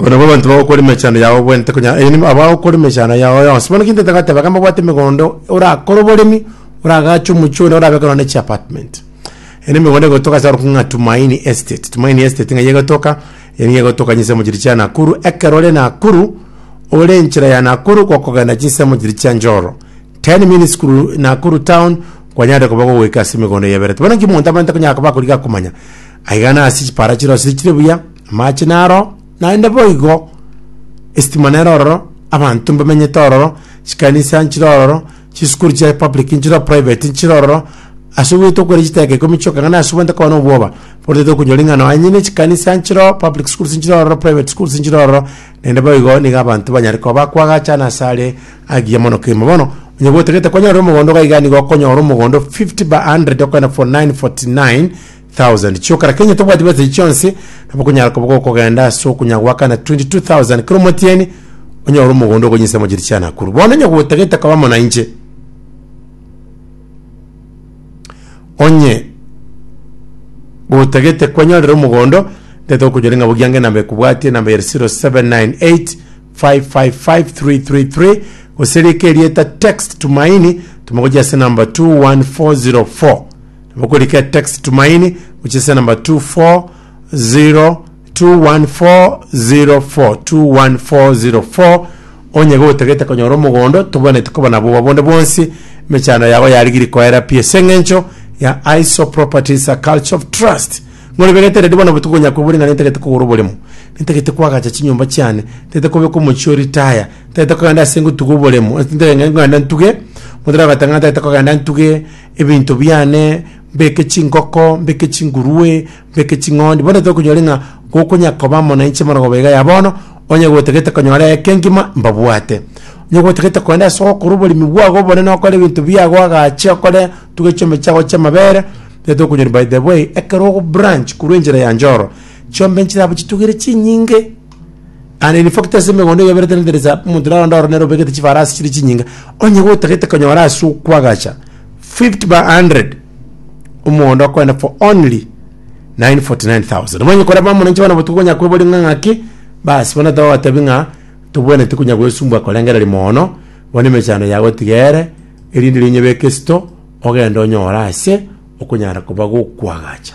Aba nabwo abanto bagokora emechando yao bwente, konya erio nigo abagokora emechando yao yonsi. Bono kintete goteba iga mbabwate emegondo orakore oboremi, oragache omochie one orabe korwa na echi apartment. Eye ne emegondo egotoka ase orokigni ng'a Tumaini Estate. Tumaini Estate ng'ai egotoka, eye nigo egotoka chinsemo chiria chia Nakuru, ekero ore Nakuru, ore enchera ya Nakuru gokogenda chinsemo chiria chia Njoro. Ten minutes kuru Nakuru town, kwanyarete koba gogoika ase emegondo eye ya Ebereti. Bono nki omonto abwate konya akoba akorigi akomanya, aiga nasi chipara chire ase chire buya, Amache naro naende boigo, esitima nero ororo, abanto mbamenyete ororo, chikanisa nchire ororo, chisukuru chia public nchire ororo, private nchire ororo, ase ogwete okweri chiteka ikomi chioka ng'a nasubete koba nobwoba, bono totari konyora ing'ana aye nyene chikanisa nchire ororo, public schools nchire ororo, private schools nchire ororo, naende boigo nigo abanto banyare koba bakoagachana ase are agiya mono kegima. Bono, onye gotagete konyore omogondo iga iga nigo okonyora omogondo fifty by hundred okogenda for nine forty nine. thousand chiokera kenya tobwati bwete chionsi nabo kunyara koba gokogenda ase okunya gwakana 22000 kero omotieni onyore omogondo okonyisa mochiri chia nakuru bono onye gotagete koba monanche onye gotagete kwenyorera omogondo ndete okonyora ng'a bogiange namba ekobwatie namba ere 0798 555333 gose rika erieta text tumaini tumagochia ase namba 21404 Mokorike text Tumaini gochesa namba 2402140424 onye gotagete konyora omogondo tobwenerete koba nabo obo bonde bwonsi emechando yago yarigirie koera pi ase eng'encho ya ISO Properties a Culture of Trust ng'ori begete redi bono botuko konya kwebori ng'a nintagete kogora oboremo nintagete kwagacha chinyomba chiane nintagete kobeka omochie oritaya nintagete kogenda ase ngotuga oboremo ntuge motera ogoteba ng'a nintagete kogenda ntuge ebinto biane, mbeke chingoko, mbeke chingurue, mbeke ching'ondi, bono tokonyore ng'a gokonya koba amo nainche bono goba iga ya bono, onye gotagete konyora eke ngima, mbabwate. Onye gotagete kogenda ase ogokora oboremi bwago obonene okore ebinto biago agache okore tuge chiombe chiago chi'amabere, nigo tokonyora by the way, ekero ogo branch korwa enchera ya Njoro, chiombe nchirabo chitugere chinyinge. And in fact ase emegondo eyoberete nederisa omonto naronda oro nere obegete chifarasi chire chinyinga onye gotagete konyora ase okwagacha 50 by 100 omogondo okoenda for only 949000 omanye koreba omonenche bono botuko konya kweboria ng'a ng'aki bas bono togotebi ng'a tobwenereti konya gwesumbwa korengereria moono bono emechando yago tiga ere erinde riria onyebeke esito ogende onyore ase okonyara koba gokwagacha.